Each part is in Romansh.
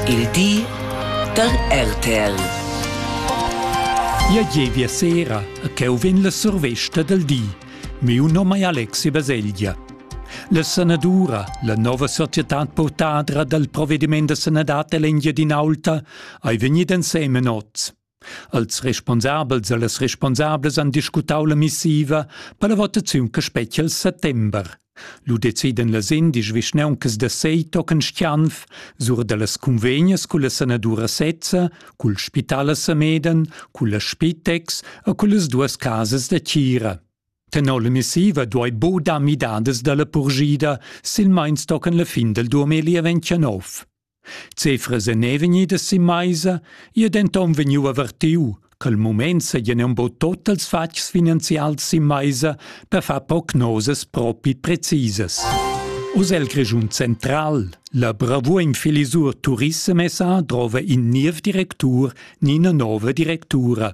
Il di da RTL. Ja gievia sera, ch'eu vegn la survesta del di. Miu nom è Alexi Baselgia. La sanadura, la nova societad portadra dal provvediment da sanadad dell'Engiadinaulta, ei vegnida ensemen oz. Als responsabels e las responsablas han discutau la missiva per la votaziun che spetga il settember. Lu deciden las indisch vischnauncas da sei tochen Stianf sur dallas convegnas culla sanadura sezza, cul spital a Sameden, culla Spitex e cullas duas casas da tgira. Tenor la missiva duei bo dar midadas dalla purschida, silmeins tochen la fin del 2029. Cefras èn er vegnidas sin maisa, i è denton vegniu avertiu ch'el mument seigien embo tot els fatgs finanzials sin maisa per far prognosas propi precisas. Oz el Grischun Central, la bravuim Filisur Turissem SA drova in niev directur ni ina nova directura.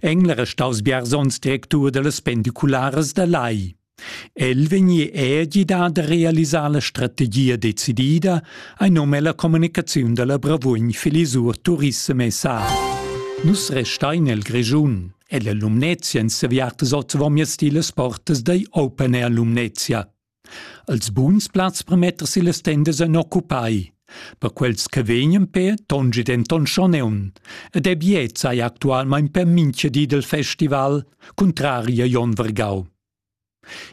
Engler è staus biars onns directur dallas pendicularas da Lai. El vegni è gidà da realisar la strategia decidida ein num ella communicaziun dalla Bravugn Filisur Turissem SA. Nus restein el Grischun. Ella Lumnezia en seviartas oz vomias ti las portas da Open Air Lumnezia. Els buns plazs per metter si las tendas en occupai. Per quels che vegnan per tongi denton schon eun, ed è biet sei actualmein per mincha di del festival, contrari a Jon Vergau.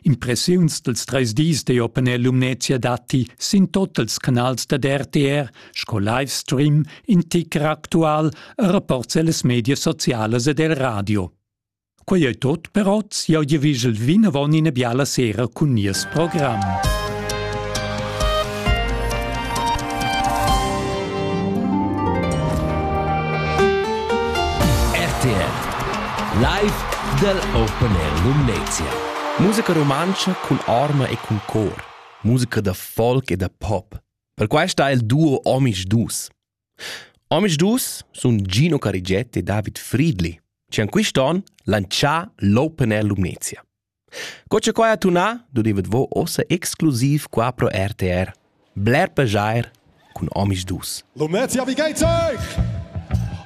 Impressiuns dels treis dis de Openel Lumnezia datti sin totals canals da RTR, sco Livestream, in ticker actual e rapports ellas media socialas ed el radio. Quei ei tot per oz. Jau giavischel vinavon ina biala sera cun nies program. RTL Live dal Open Air Lumnezia. Musica rumantscha cun arma e cun cor. Musica da folk e da pop. Per questa è il duo Omisch Dus. Omisdus sun Gino Carigiet e David Friedli chi han quist on lantschà l'Open Air Lumnezia. Co cha quai ha tunà dudevet vo uossa exclusiv qua pro RTR. Bler plaschair cun omisdus. Lumnezia vi geit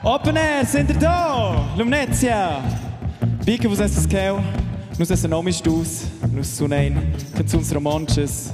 Open Air Center do! Lumnezia! Bi che vus esses cheu, nus essen omisdus, nus sunein canzuns romontschas,